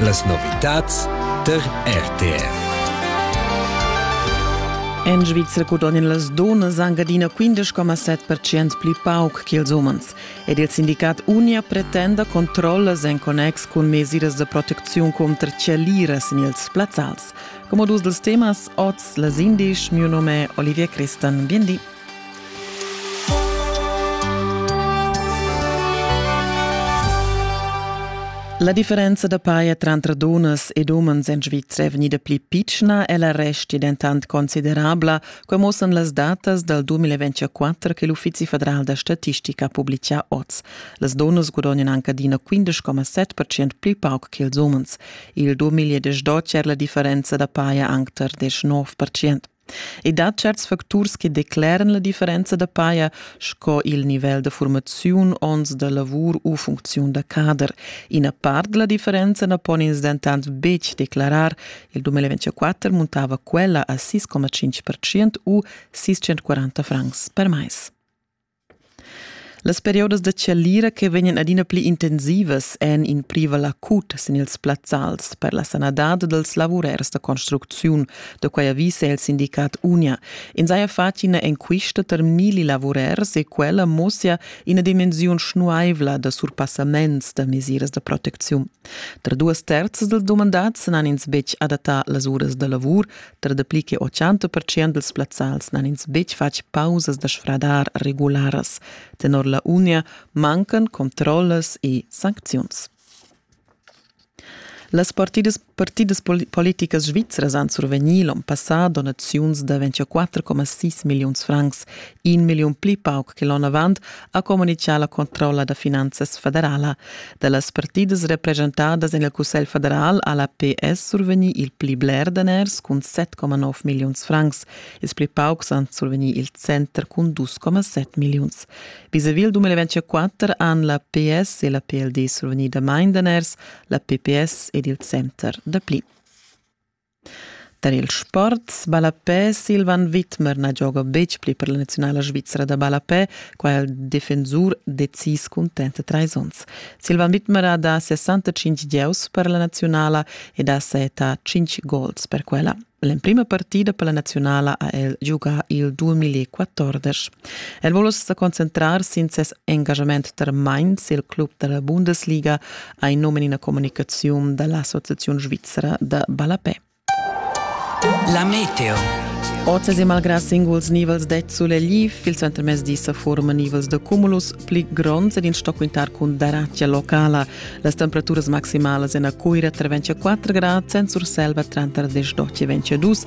Las novitads tar RTR. En Svizra gudognan las donas anc adina 15,7% pli pauc che ils umens. Ed il sindicat Unia pretenda controllas en connex cun mesiras de protecziun contra chalieras en ils plazzals. Come dus dels temas, oz les indisch, mio nome è Olivier Christen. Bien di. La differenza da paia tranter dunnas ed umens en Svizra è vegnida pli pitschna e la resti dentant considerabla, quai muossan las datas dal 2024 che l'Uffizi federal da statistica ha publicà oz. Las dunnas gudognan anc adina 15,7% pli pauc che ils umens. Il 2018 è la differenza da paia anc tar 19%. I dat certs facturs che decleran la differenza da paja, sco il nivel da formaziun, onns da lavur u funcziun da cader. Ina part della differenza na pon ins dentant betg declarar. Il 2024 muntava quella a 6,5% u 640 francs per mais. Las periodas da chalira che vegnan adina pli intensivas èn in privel acut sin ils plazzals per la sanadad dals lavurers da construcziun. Da quai avisa il sindicat Unia. Ins haja fatg ina enquista tar milli lavurers e quella mussia ina dimensiun schnuaivla da surpassaments da mesiras da protecziun. Tar duas terzas dals dumandads n'han ins betg adattà las uras da lavur, Tra dapli che 80 percent dals plazzals n'han ins betg fatg pausas da sfradar regularas. Tenor la Unia mancan controllas e sancziuns. Las partidas, partidas politicas svizras han survegnì l'onn passà donaziuns da 24,6 milliuns francs. in milliun pli pauc che l'onn avant, ha communitgà la controlla da finanzas federala. Da las partidas represchentadas en il Cussegl federal ha la PS survegnì il pli bler daners cun 7,9 milliuns francs. Ils pli paucs han survegnì il center cun 2,7 milliuns. Vis-à-vis il 2024 han la PS e la PLD survegnì damain daners, la PPS ed il center dapli. Tar ils sports ballapè Silvan Widmer na gioga betg pli per la naziunala svizra da ballapè. Qua è il defensur decis cuntent trais onns. Silvan Widmer ha dà 65 gieus per la naziunala ed ha setà 5 gols per quella. L'emprima partida per la naziunala ha el giugà il 2014. El vul uss sa concentrar sin ses engaschament tar Mainz, il club da la Bundesliga, ha in num en ina communicaziun da l'Associaziun svizra da ballapè. La meteo. Oz e malgrà singuls nivels d'ezzul e lif, il suentermezdi sa forma nivels da cumulus pli gronds ed in sto quintar cun daratgia locala. Las temperaturas maximalas en a Cuira tra 24 grad, en Surselva tranter 10 e 22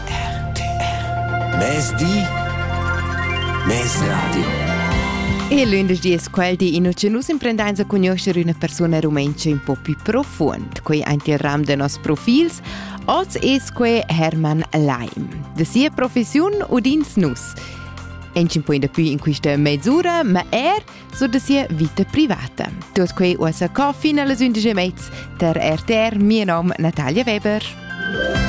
Mezdi Mezradio E lündeschdi es quel di in ucelus imprendainsa cugnuoscher üna persuna rumentscha ün po pü profuond. Quei aint il ram de nos profils. Oz es que Hermann Leim. De sia professiun udins nus. Ensin poi da più in questa mezz'ora, ma er su da sia vita privata. Tot quei uossa co fin alle 11 mezz per RTR, mio nom Natalia Weber.